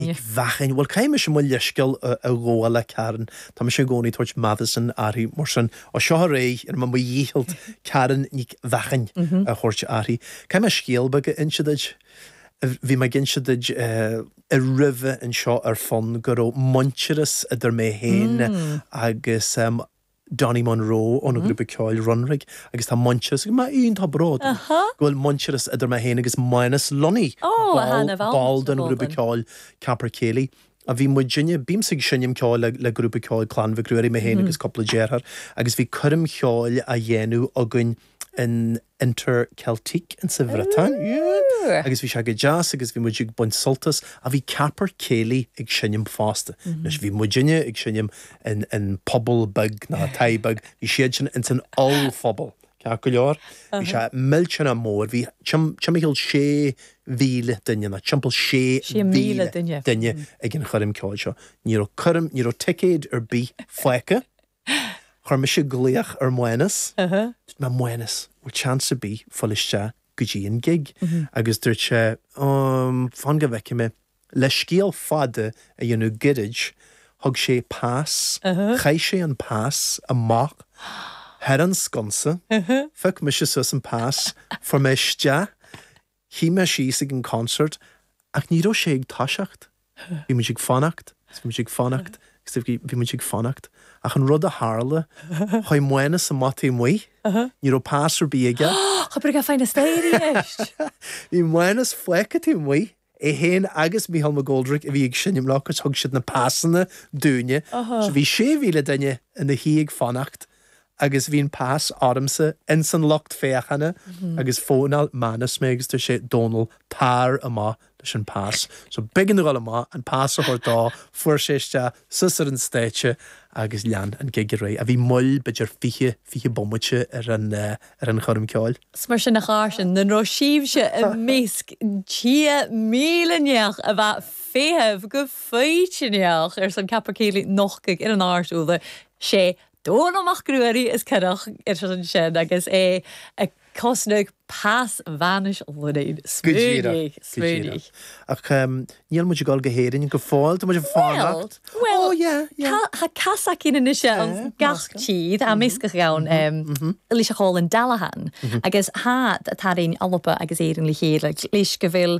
Nic Mhathain. Bhuel caithfidh mise mo leithscéal a ghabháil le Karen. Tá mise i gcónaí ag tabhairt Matheson uirthi mar sin. Ó seo ar aghaidh déanfaidh mé mo dhícheall Karen Nic Mhathain a thabhairt uirthi. Caithfidh mé scéal beag a inse duit. Bhí mé ag inse duit roimhe anseo ar fon go raibh muintearas idir mé féin agus Donnie Munro ó na grúpa ceoil Runrig agus tá muintearas agam, a Fhionn, tá bród agam go bhfuil muintearas idir mé féin agus Mánus Lunny, ball den ghrúpa ceoil Capercaillie. A bhí muidinne, bímse ag seinm ceoil le grúpa ceoil Clann Mhic Ruairí, mé féin agus cúpla deartháir, agus bhí coirm cheoil á dhéanamh againn in. Interceltique insa Bhriotáin. Ooh! Agus bhí sé go deas agus bhí muid ag baint sult as. Ach bhí Capercaillie ag seinm fosta. Anois bhí muidinne ag seinm in puball beag, ná táith beag, bhí siadsan ins an ollphuball, ceart go leor. Bhí sé millteanach mór, bhí timcheall sé mhíle duine, ná timpeall sé mhíle duine ag an choirm ceoil seo. Ní raibh coirm, ní raibh ticéid ar bith fágtha. Chuir mise glaoch ar Mhánas. Dúirt mé, Mhánas, bhfuil chance ar bith fáil isteach go dtí an gig? Agus dúirt sé, Ó, fan go bhfeicfidh mé. Le scéal fada a dhéanamh goirid, thug sé pas, chaith sé an pas amach thar an sconsa, phioc mise suas an pas, fuair mé isteach, Shuidh mé síos ag an concert ach ní raibh sé ag toiseacht. Bhí muid ag fanacht agus bhí muid ag fanacht agus bhí muid ag fanacht ach an rud a tharla, chuaigh Mánas amach taobh amuigh, ní raibh pas ar bith aige. Cha b' urrainn dha faighinn a-staigh a-rithist. Bhí Mánas fágtha taobh amuigh, é féin agus Michael McGoldrick a bhí ag seinm leo agus thug siad na pasanna dúinne. So bhí sé mhíle duine ina shuí ag fanacht Agus bhí an pas ormsa ins an lucht féachana agus phónáil Mánas mé agus dúirt sé Dónall tar amach leis an pas. So b'éigean domh dul amach an pas a thabhairt dó, fuair sé isteach suas ar an stáitse agus lean an gig ar aghaidh. A bhí moill b'fhéidir fiche, fiche bomaite ar an choirm ceoil. Is mar sin a chàirdean nan robh sibhse am measg sia mìle neach a bha a' feitheamh gu foighidneach airson Capercaillie nochdadh air an àrd-ùrlar 's e Dónall Mac Ruairí as coireach ar sin agus é a' cosnadh pas Mhánuis Lunny. Go díreach, Smaoinigh, go díreach. smaoinigh. Ach níl muid ag dul go hÉirinn go fóill, tá muid ag fanacht. Bhuel, bhuel, Oh yeah, yeah. tá, tá cas againn anois ann Eh, gach meascán. tír, tá measgachadh ann, leis a' chòmhlan Dallahan, agus tá, tá, tá araon, Alba agus Éirinn le chéile, leis go bhfuil